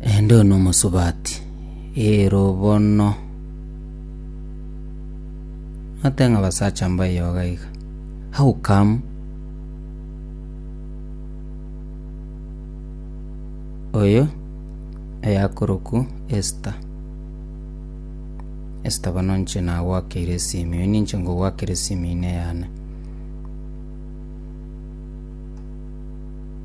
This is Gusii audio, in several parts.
Ende one omosubati, eero bono. Nate ng'a basacha mbayoga iga. How come? Oyo eyakorokwu Esther. Esther bono nche nagwakeire esimi, oyo ninche ngogwakera esimi ine yane.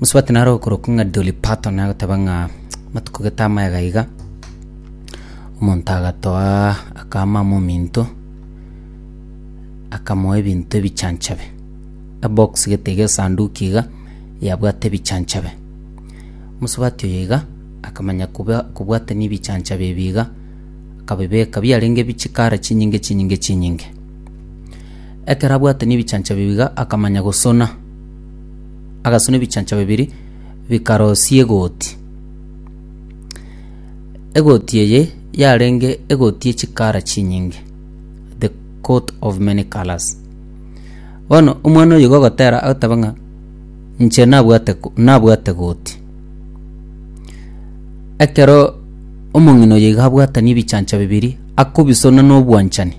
musubati naro okorokwa ng'a Dolly Parton agoteba ng'a matuko gete amaya iga iga omonto agatoa akama amo ominto akamoa ebinto ebichanchabe, ebox gete iga esanduku iga yabwate ebichanchabe. Mosubati oyo iga akamanya koba kobwatania ebichanchabe ebi iga akabibeka biarenge bichikara chinyinge chinyinge chinyinge. Ekero abwate nebichaancha bibiga akamanya gosona. Agasona ebichaancha bibiri bikarosia egoti. Egoti eye yarenge egoti ye chikara chinyinge, the coat of many colours. Bono omwana oyo iga ogotera agoteba ng'a inche nabwate ko nabwate goti. Ekero omong'ina oyo iga abwatani ebichaancha bibiri akobisona na obwanchani.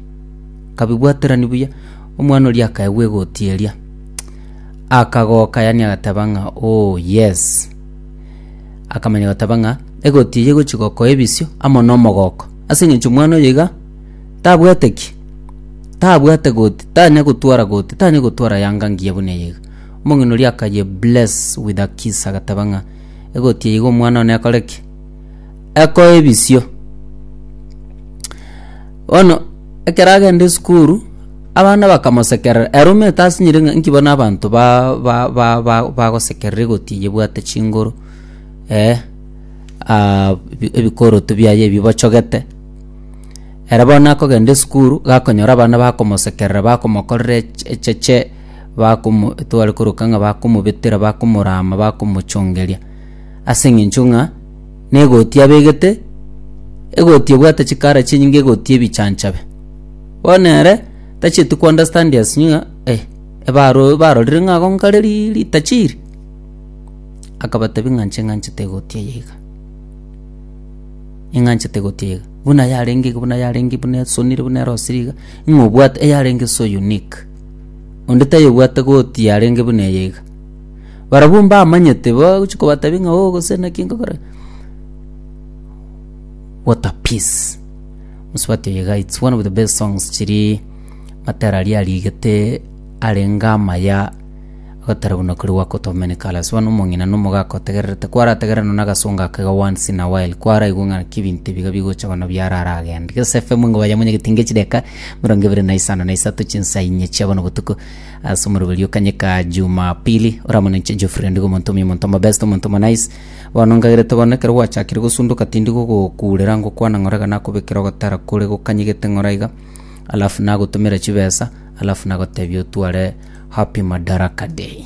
kabibwaterani buya. Omwana oria akaegwa egoti eria, akagoka yani agateba ng'a oh yes. Akamanya goteba ng'a egoti eye egochi gokoa ebisio amo na omogoko. Ase eng'encho omwana oyo iga tabwate ki? Tabwate goti, tanya gotwara goti, tanya gotwara yanga ngiya buna eye iga. Omong'ina oria akaye bless with a kiss agateba ng'a egoti eye iga omwana one ekore ki? Ekoe ebisio. Bono ekero agenda esukuru, abana bakamosekerera, ere omanyete asinyire ng'a nki bono abanto ba- ba- ba- ba- bagosekerera egoti eye ebwate chinguru eh ah ebi- ebikoroto biaye ebi bochogete. Ere bono akogenda esukuru, gakonyora abana bakomosekerera bakomokorera eche echeche, bakomo tware koroka ng'a bakomobetera, bakomorama, bakomochongeria ase eng'encho ng'a. na egoti abegete, egoti ebwate chikara chinyinge egoti ebichanchabe. Bono ere tachieti ko understand as you know eh ebaro barorire ng'a ago nkare ri ritachi iri, akabatebi ng'a inche ng'anchete egoti eye iga, ing'anchete egoti eye iga, buna yarenge iga buna yarenge buna esonire buna erosire iga, ng'a obwate eyarenge so unique, onde tayebwate goti yarenge buna eye iga. Barabwo mbamanyete bagochi kobatabia ng'a oo gose naki nkogora what a peace mosubati oyo iga it's one of the best songs chiria matera aria arigete arenge amaya agatera buna kori work out of many colours bono omong'ina na omogaka otegererete kwarategera nonye na agasongo aka iga once in a while kwaraigwe ng'a naki ebinto ebi iga bigocha bono biaro aragende gese fm nigo bayamonyegetie nge chideka emerongo ebere na isano na isato chinsa inye chia bono botuko. Ase omoroberio kanyeka Jumapili, oramonenche Geoffrey Ondigo omonto omuya, omonto omobest, omonto omonais. Bono ngagerete bono ekero gwachakire gosundoka tindi gogokuurera ngokwana ng'ora iga nakobekera ogotara kore gokanyegete ng'ora iga, alafu nagotomera chibesa, alafu nagotebia otware Happy Madaraka Day.